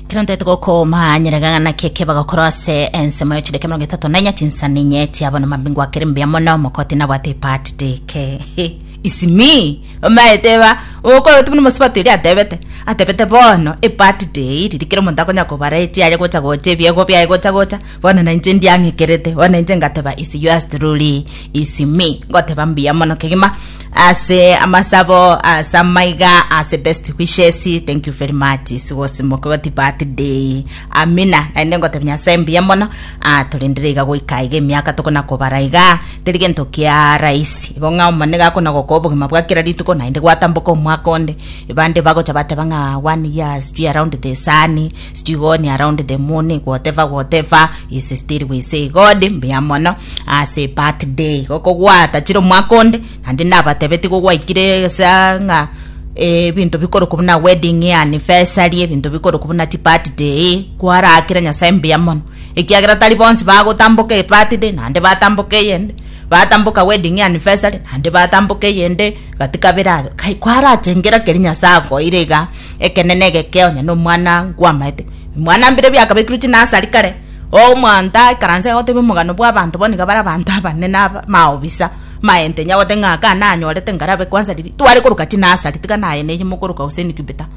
Kero ntete gokoma nyeregana keke bagakora ase ensemo ya chideke mirongo etato na inya chinsani inye chiabona mambingo akere mbuya mono mokoti nabwate part deke He, isimi omaeteba okoyotu buna mosibati eri atebete atebete bono epart day riri kero omonto akonya kobara echiaye gocha gocha ebiegwa biaye gocha gocha bono nainche ndiang'ekerete bono nainche ngateba is yours truly isimi ngoteba mbuya mono kegima Ase amasabo ase amaiga ase best wishes thank you very much isi gose mokogoti birthday amina naende ngotebia nyasae mbuya mono ah, torendere iga goika iga emiaka tokona kobara iga teri gento kia raisi igo ng'a omone gakona gokoa obogima bwa kera rituko naende gwatamboka omwaka onde ebande bagocha bateba ng'a one year sijui around the sun Still going around the moon whatever whatever is still we say god mbuya mono ase birthday igo kogwatachire omwaka onde naende nabatebetie igo gwaikire sa ng'a ebinto bikoruka buna wedding anniversary ebinto bikoruka buna chi birthday kwarakire nyasae mbuya mono ekiagera tari bonsi bagotamboka ebirthday naende batamboka eyende batamboka wedding anniversary naende batamboka eyende gati kabere aria kai kwarachengera keri nyasae akoeire iga Ekenene egeke onye nomwana nkwamaete. Mwana mbire biakabekirwe chinasari kare, omonto aikaranse agoteba omogano bw'abanto bono niga bare abanto abanene aba maobisa, maente nyagote ng'a aka nanyorete ngarabe kwanza riria tware koroka chinasari tiga naye neye mokoroka gose incubator,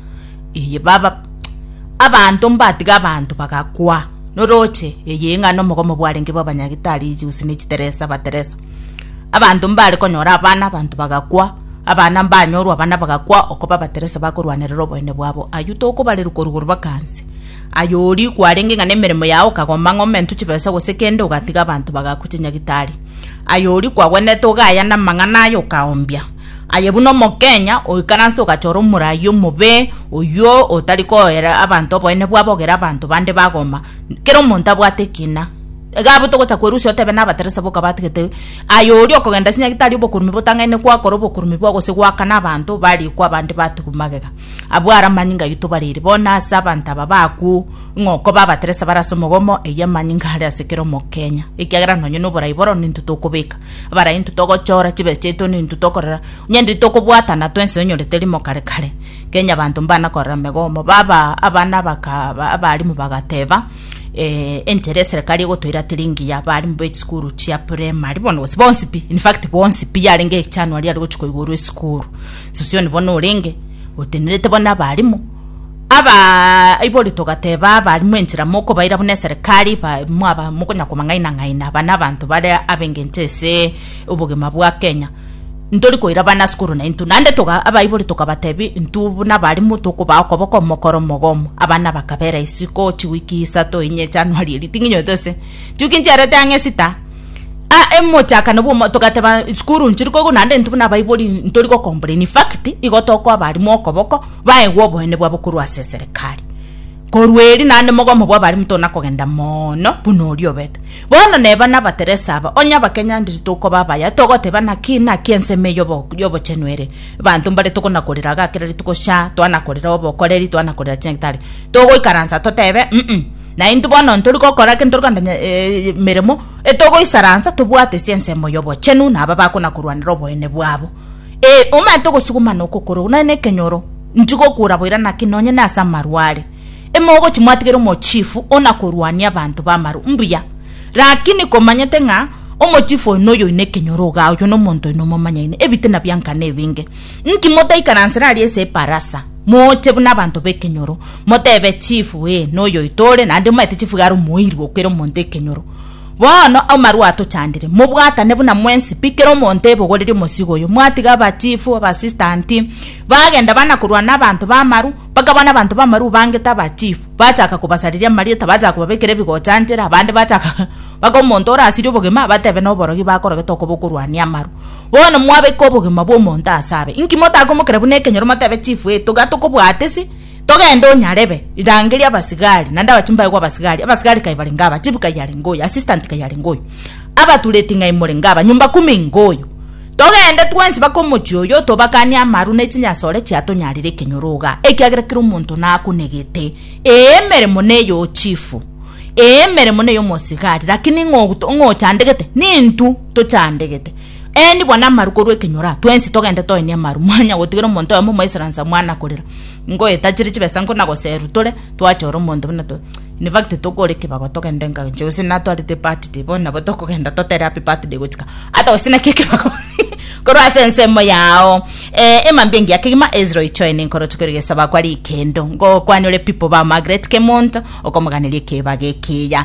eye baba abanto mbatiga abanto bagakwa, noroche eye ng'a nomogomo bwarenge bwa abanyagitari gose ne chiteresa bateresa. Abanto mbare konyora abana, abanto bagakwa, abana mbanyorwa, abana bagakwa, oko babateresa bakorwanerera oboene bwabo. Ayio tokobarerwa korwa igoro baka nse. Aye oria kwarenge ng'a nemeremo yao okagomba ng'omentwe chibesa gose kende ogatiga abanto bagakwa chinyagitari. Aye oria kwagwenerete ogaya namang'ana aye okaombia. Aye buna omokenya oikaransete ogachora omoraia omobe, oyio otari koera abanto oboene bwabo ogere abanto bande bagoma. Kera omonto abwate ekina. Iga abwo togocha kwerusia otebe nabateresa boka batigete aye oria okogenda ase nyagetari obokurume botang'aine kwakora obokurume bwa gose goakana abanto ba riko abande batigwe magega. Abwo are amanyinga aito bareire. Bono ase abanto aba bakwo ng'o koba abateresa bare ase omogomo eyio amanyinga are ase kera omokenya. Ekiagera nonye noborai bororo nintwe tokobeka. Abarai intwe togochora chibesa chiaito nintwe tokorera. Onye ndi tokobwatana twensi onyorete rimo kare kare. Kenya abanto mbana korera megomo. Baba abana baka abarimu bagateba. eh, enchera eserekari egotoirateria engiya abaarimu b'echisukuru chia primary bono gose bonsi pi in fact bonsi pi yarenge echanuari ari gochia koigorwa esukuru sosioni bono orenge otenerete bono abaarimu aba aibori togateba abaarimu enchera mokobaira buna eserekari ba- mwaba mokonya komang'aina ng'aina aba nabanto bare abengencho ase obogima bwa kenya Ntori koirabana ase korwa naintwe, naende togaa abaibori tokabateebia intwe buna abarimo tokobaa okoboko omokoro omogomo. Abana bakabeera isiko chiwiki isato inye Januari eri ting'inyoete gose chiwiki nchiarete ang'e Esita ah emochakano bw'omwa togateba isukuru nchiri koigwa naende intwe buna abaibori ntori gokomplaini in fact igo tokoa abarimo okoboko baegwe oboene bwabo korwa ase eserekari. Korwa erio naende mogomo bw'abare motona kogenda mono buna oria obete. Bono neba nabateresa aba, onye abakenyanderia tokoba abaya, togoteba naki naki ensemo eye y'obo- y'obochenu ere. Abanto mbare tokonakorera iga kera rituko sha, twanakorera obokoreri, twanakorera ching'itari. Togoikaransa totebe, U'u, naintwe bono ntori gokora ake ntori kogenda emeremo, etogoisaransa tobwate ase ensemo y'obochenu na aba bakonakorwanera oboene bwabo. Ee, omanyete ogosuguma na okokora okwo, nonye na ekenyoro, ntigokura boira naki nonye nase amarware. Emogochi mwatigere omochifu onakorwania abanto b'amarwa, mbuya. Rakini komanyete ng'a omochifu oyo noyo oino ekenyoro igaa, oyio nomonto oino omomanyaine, ebitina biankana ebinge. Inki motaikaransera aria ase eparasa, moche buna abanto b'ekenyoro, motebe, Chifu, ee, noyo oito ore, naende omanyete chifu iga are omoiri gokoira omonto ekenyoro? Bono amarwa atochandire, mobwatane buna mwensi pi, kera omonto ebogorerie omosigo oyo. Mwatiga abachifu, abasistanti, bagenda bana korwa n'abanto b'amaru, bakabana abanto b'amaru bangete abachifu, bachaka kobasareria amarieta, bachaka kobabekera ebigocha nchera, abande bachaka baka omonto orasirie obogima, abatebe noborogi bakorogete okoba okorwania amaru. Bono mwabeka obogima bw'omonto ase abe, inki motakomokera buna ekenyoro motebe chifu eito, iga tokobwatisi? Togende onyarebe, rangeria abasigari, naende abatimbu baye gw'abasigari, abasigari kaye barenge aba, chifu kaye arenge oyo, assistant kaye arenge oyo, abatureti ng'ai morenge aba, nyomba kumi ngoyo. Togende twensi bake omochie oyo, tobakanie amaru ne chinyasore chiatonyarire ekenyoro iga, ekiagera kera omonto nakunegete, ee, emeremo ney'ochifu, ee, emeremo ney'omosigari, lakini ng'o ng'ochandegete? Nintwe tochandegete. Ee, nigo namaru korwa ekenyoro, twensi togende toenie amaru. Mwanya gotigera omonto oyomo Omoisransa mwana korera, ingo etachire chibesa ingo na goserwa tore twachora omonto buna to in fact tokore ekebago togende enka inche gose natwarete ebirthday bono nabo tokogenda totere happy birthday gochika ata gose naki ekebago korwa ase ensemo yao. Ee, emambia engiya kegima Ezra oichoe nenkoroche kore egesaba kwa rikendo, ngokwane ore pipo ba Margaret Kemonto, okomoganeria ekebago ekiya.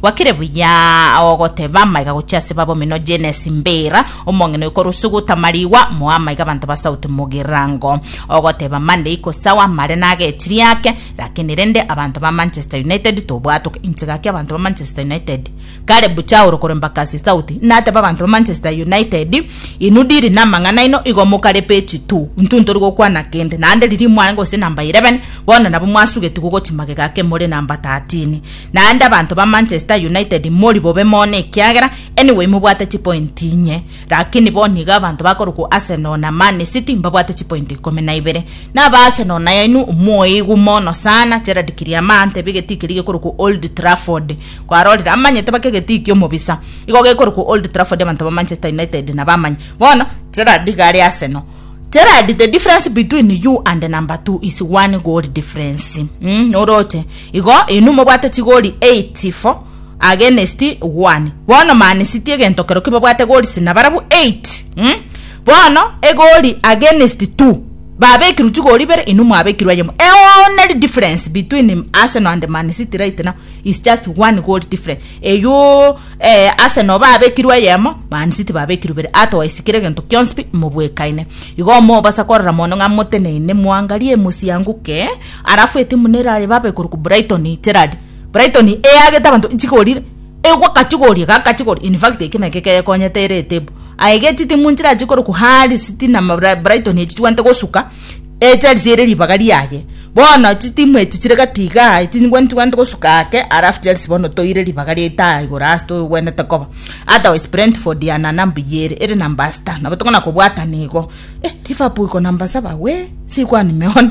Gwakire buya ogoteba amaiga gochia ase baba omino Genesi Mbira, omong'ina oyo korwa Sugu Tamarigwa, moa amaiga abanto ba Sauti Mugirango. Ogoteba Monday iko sawa amare nagetiri ake, lakini rende abanto ba Manchester United tobwatoka inche gaki abanto ba Manchester United. Kare bucha aoro kore Mbakasi Sauti nateba abanto ba Manchester United inwe diri namang'ana aino igo mokare page two intwe ntori gokwana kende naende riria mwarenge gose number 11 bono nabo mwasugetigwe gochia magega ake more number 13 Naende abanto ba Manchester United mori bobe mono ekiagera anyway mobwate chipointi inye, lakini bo nigo abanto bakorokwa Arsenal na Man City mbabwate chipointi ikomi na ibere. Na aba Arsenal nayainwe omoigu mono sana Gerard Kiriama antebia egetiki keria gekorokwa Old Trafford kwarorire amanyete baka egetiki omobisa igo gekorokwa Old Trafford abanto ba Manchester United nabamanye bono Gerard iga are Arsenal Gerard the difference between you and number two is one goal difference mm, noroche Igo inwe mobwate chigori eight for against one, bono Man City egento kerokio babwate gori sina barabwo eight, um, bono egori against two, babekirwe chigori ibere inwe mwabekirwe eyemo. E only difference between Arsenal and Man City right now is just one goal difference. Eywo eh, Arsenal babekirwe eyemo, Man City babekirwe ibere. Otherwise kire egento kionsi pi mobwekaine. Igo mobasa korora mono ng'a moteneine mwangarie mosianguke Alafu etimu nere aye babe korokwa Brighton Gerald Brighton eagete abanto nchikorire egwa kachigorie ga kachigorie in fact eki naki kekonyete ere etebo aye ge chitimu nchirachi korokwa Hull City na Brighton echi chibwate gosuka e Chelsea ere ribaga riaye bono chitimu echi chire gati igaa echi nibwo nchibwate gosuka ake alafu Chelsea bono toire ribaga riaita igoro ase togwenerete koba otherwise Brentford ya na number eye ere ere number sita nabo tokona kobwatana igo eh Liverpool iko number saba wee sikwanime one.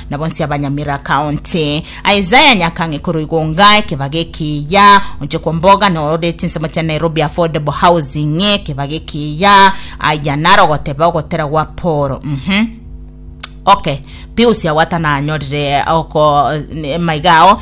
na bonsi abanyamera kaonte. Isaiah Nyakang'e korwa Igonga, ekebaga ekiya, onche kwa mboga na ororire chinsemo chia Nairobi Affordable Housing, ekebaga ekiya, aya naro ogoteba ogotera gwa Paul. Mhm. Okay. Pius Awata nanyorire oko maiga ao